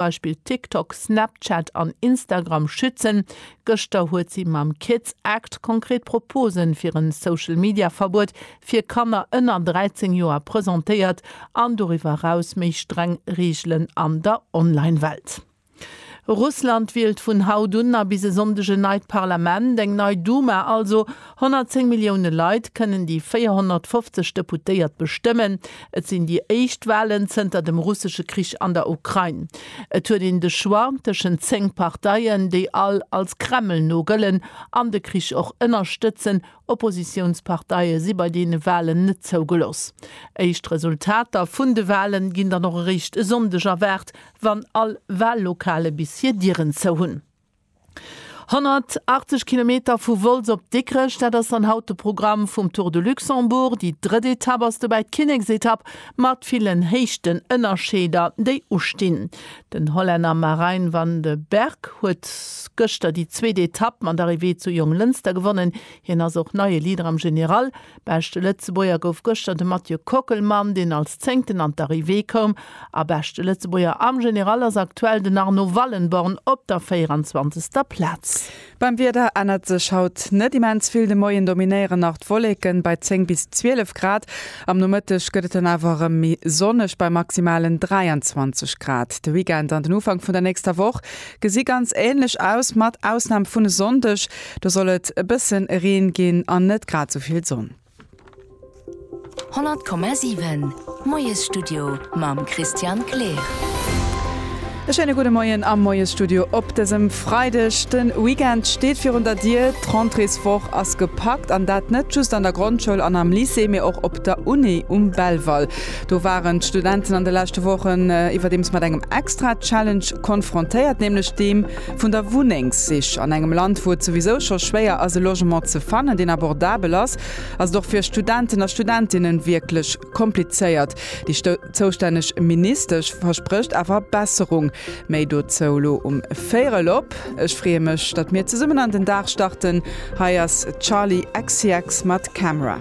d'Beispill TikTok, Snapchat an Instagram schützen. Gëschter huet si mam Kids Act konkret Proposen fir en Social Media Verbuet fir Kanner ënner 13 Joer presentéiert an doriwwer eraus méi streng Reegelen an der Online Welt. Russland wielt vun haut un a bis e Sonndeg en neit Parlament, eng nei Duma also. 110 Millioune Leit kënnen déi 450 Deputéiert bestëmmen. Et sinn déi éischt Walen zënter dem russesche Krich an der Ukrain. Et huet een de Choix tëschent 10 Parteien, déi all als Kreml no gëllen an de Krich och ënnerstëtzen. Oppositiounsparteie si bei deene Walen net zougelooss. Éischt Resultater vun de Wale ginn dann och eréischt e Sonndeg erwaart, wann all Wallokale bis hir Dieren zou hunn. 180 Kilometer vu Wolz op Dikrech, dat ass dann haut de Programm vum Tour de Luxembourg. Déi drëtt Etapp ass dobäi d'Kinneksetapp mat villen Héichtenënnerscheeder, déi ustinn. Den Hollänner Marijn van de Berg huet gëschter déi zweet Etapp mat Arrivée zu Jonglënster gewonnen. Hien ass och neie Leader am General. Beschte Lëtzebuerger gouf gëschter de Mathieu Kockelmann, deen als Zéngten an d'Arrivée koum. A beschte Lëtzebuerger am General ass aktuell den Arnaud Wallenborn op der 24. Plaz. Beim Wieder ännert sech haut net immens vill. De Moien dominéieren nach d'Wolleken bei 10 bis 12 Grad. Am Nomëtteg gëtt et dann awer erëm méi sonneg bei maximalen 23 Grad. De Weekend an den Ufank vun der nächster Woch Gesi ganz ähnlech aus, mat Ausnahm vun e Sonndeg, do soll et e bëssen Reen ginn an net grad sou vill Sonn. 100,7 Moiesstudio mam Christian Kleer. E schéine gudde Moien am Moiesstudio op dësem Freideg. De Weekend steet virun der Dier. D'Rentréeswoch ass gepackt an dat net just an der Grondschoul an am Lycée, mee och op der Uni um Belval. Do waren d'Studenten an de leschte Wochen iwwerdeems mat engem extra Challenge konfrontéiert, nämlech deem vun der Wunnengssich. An engem Land, wou et souwisou scho schwéier ass e Logement ze fannen, deen abordabel ass, ass et och fir Studenten a Studentinnen wierklech komplizéiert. Déi zoustänneg Ministesch versprécht awer Besserung. Méi dozou elo um véierel op. Ech freeë mech, datt mir zesummen an den Dag starten. Hei ass Charli XCX mat Camera.